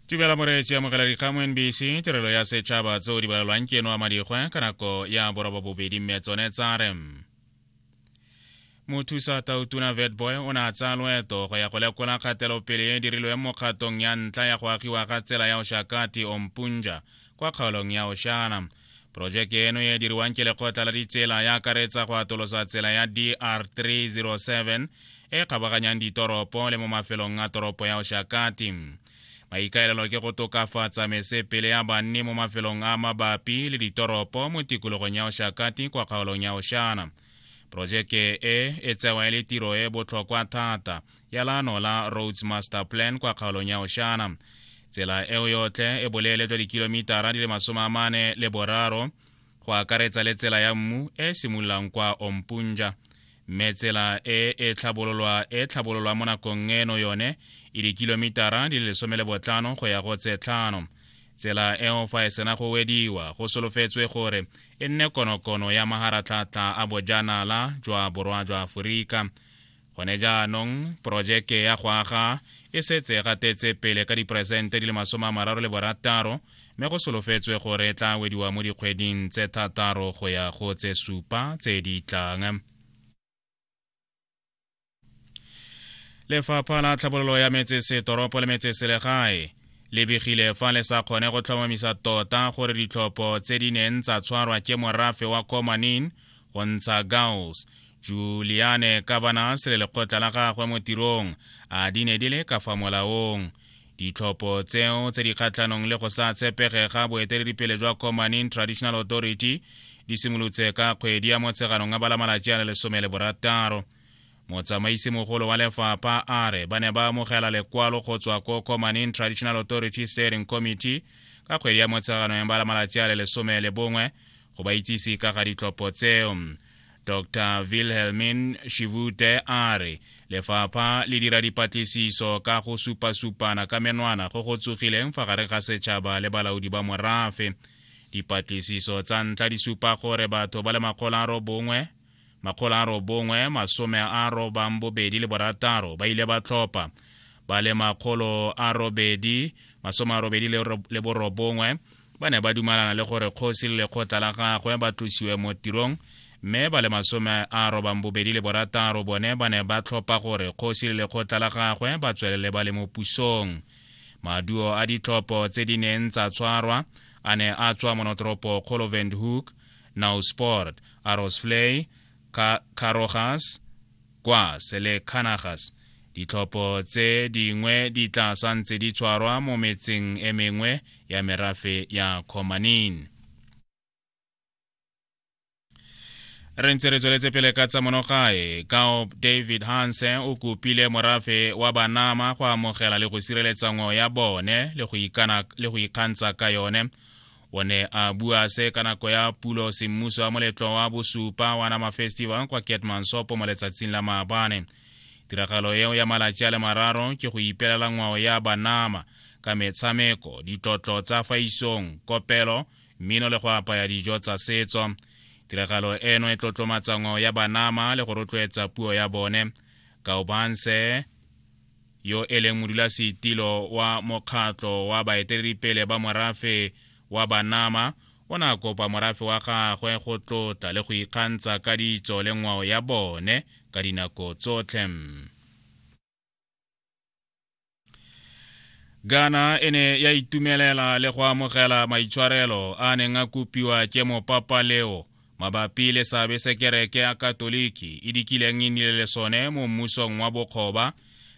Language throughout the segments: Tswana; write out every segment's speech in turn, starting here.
tumela moreetsi ya mogela dikgamo nbc tirelo ya setšhaba tseo di balelwang ke eno a madikgwe ka nako ya boroba bobedi mme tsone tsa re mothusa tautuna vetboy o ne a tsaya loeto go ya go lekola kgatelopele e dirilwe mo kgatong ya ntlha ya go agiwa ga tsela ya oshakati ompunja kwa kgaolong ya oshana Projeke eno e diriwang ke lekgotla la ditsela ya akaretsa go atolosa tsela ya DR 307 e kgabaganyang ditoropo le mo mafelong a toropo ya Oshakati. Maikaelelo ke go tokafatsa mesepele ya banni mo mafelong a mabapi le ditoropo mo tikologong ya Oshakati kwa kgaolong ya Oshana. Projeke e e tsewa e le tiro e botlhokwa thata ya laano la roads master plan kwa kgaolong ya oshana tsela eo yotlhe e boleele jwa dikilomitara di le masome a mane le boraro go akaretsa le tsela ya mmu e e simololang kwa ompunja mme tsela e e tlhabololwa e tlhabololwa mo nakong eno yone e dikilomitara di le lesome le botlhano go ya go tse tlhano tsela eo fa e sena go wediwa go solofetswe gore e nne konokono ya maharatlhatlha a bojanala jwa borwa jwa aforika gone jaanong porojeke ya go aga e setse e gatetse pele ka diperesente di le masome a mararo le borataro mme go solofetswe gore e tla wediwa mo dikgweding tse thataro go ya go tse supa tse di tlang lefapha la tlhabololo ya metsesetoropo le metseselegae le begile fa le sa kgone go tlhomamisa tota gore ditlhopho tse di neng tsa tshwarwa ke morafe wa komanin go ntsha gaus juliane kavanas le lekgotla la gagwe mo tirong a di ne di le ka fa molaong ditlhopho tseo tse di kgatlhanong le go sa tshepege ga boeteledipele jwa commanin traditional authority di simolotse ka kgwedi ya motsheganong a bala malatsi a le lesome le borataro motsamaisi mogolo wa lefapha a re ba ne ba amogela lekwalo go tswa ko commaning traditional authority steering committee ka kgwedi ya motshegano ya bala malatsi a le lesome le bongwe go ba itsise ka ga ditlhopho tseo dr wilhelmin shivute a re lefapha le dira dipatlisiso ka go supasupana ka menwana go go tsogileng fa gare ga setšhaba le balaodi ba morafe dipatlisiso tsa ntlha di supa gore batho ba le makgolo a robongwe makgolo a robongwe masome a robang bobedi le borataro ba ile ba tlhopha ba le makgolo a robedi masome a robedi le borobongwe ba ne ba dumalana le gore kgosi le lekgotla la gagwe ba tlosiwe mo tirong mme ba le masome a robang bobedi le borataro bone ba ne ba tlhopha gore kgosi le lekgotla la gagwe ba tswelele ba le mo pusong maduo a ditlhopho tse di neng tsa tshwarwa a ne a tswa monotoropo kgolo vendhoek Nausport, Arosvlei, Ka Karogas, Gwas le Kanagas. Ditlhopho tse dingwe di tla santse di tshwarwa mo metseng e mengwe ya merafe ya Khomanin. re ntse re tsweletse pele ka tsa monogae kao david hansen o kopile morafe wa banama go amogela le go sireletsa ngwao ya bone le go ikgantsha ka yone o ne a bua se ka nako ya pulo semmuso wa moletlo wa bosupa wa nama festival kwa ketmansopo mo letsatsing la maabane tiragalo eo ya malatsi a le mararo ke go ipelela ngwao ya banama ka metshameko ditlotlo tsa fa isong kopelo mmino le go apaya dijo tsa setso tiragalo eno e tlotlomatsa ngwao ya banama le go rotloetsa puo ya bone kaobanse yo e leng modulasetilo wa mokgatlho wa baeteledipele ba morafe wa banama o ne a kopa morafe wa gagwe go tlotla le go ikgantsha ka ditso le ngwao ya bone ka dinako tsotlhe ghana e ne ya itumelela le go amogela maitshwarelo a neng a kopiwa ke mopapaleo mabapi le seabe se kereke ya katoliki e dikileng e nile le sone mo mmusong wa bokgoba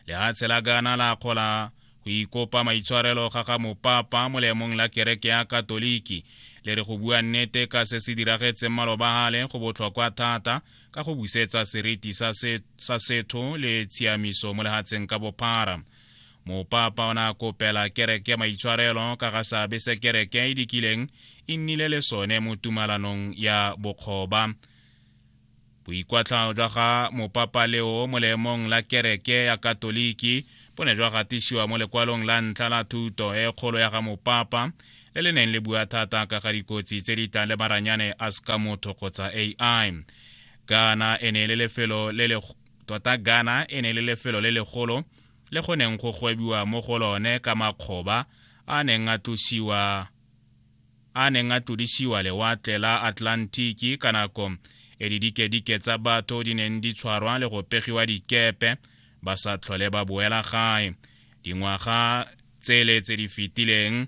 lehatshe la gana la kgola go ikopa maitshwarelo ga ga mopapa mo leemong la kereke ya katoliki le re go bua nnete ka se se diragetseng malobagale go botlhokwa thata ka go busetsa seriti sa setho le tshiamiso mo lehatsheng ka bophara Mopapa o ne a kopela kereke maitshwarelo ka ga seabe se kereke e dikileng e nnile le sone mo tumalanong ya bokgoba. Boikwatlhao jwa ga Mopapa Leo mo leemong la kereke ya Katoliki bo ne jwa gatisiwa mo lekwalong la ntlha la thuto e kgolo ya ga Mopapa le le neng le bua thata ka ga dikotsi tse di tlang le maranyane a seka motho kgotsa AI. Ghana e ne e le lefelo le le tota ghana e ne le lefelo le legolo le go neng go gwebiwa mo go lone ka makgoba a neng a tlosiwa a neng a tlodisiwa lewatle la atlantiki ka nako e didikedike tsa batho di neng di tshwarwa le go pegiwa dikepe ba sa tlhole ba boela gae dingwaga tsele tse di fetileng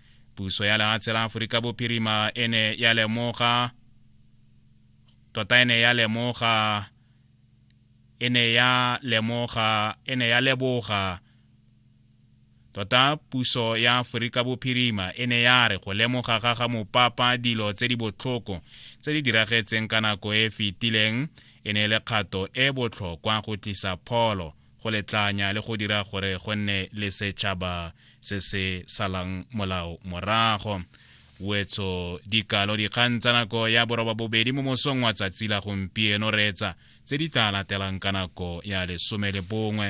puso ya lehatshe la aforika bophirima e ne ya lemoga tota e ne ya lemoga e ne ya lemoga e ne ya leboga tota puso ya aforika bophirima e ne ya re go lemoga ga ga mopapa dilo tse di botlhoko tse di diragetseng ka nako e e fetileng e ne e le kgato e botlhokwa go tlisa pholo go letlanya le go dira gore go nne le setšhaba se se salang molao morago wetso dikalo dikgang tsa nako ya boroba bobedi mo mosong wa tsatsi la gompieno reetsa tse di tla latelang ka nako ya lesome le bongwe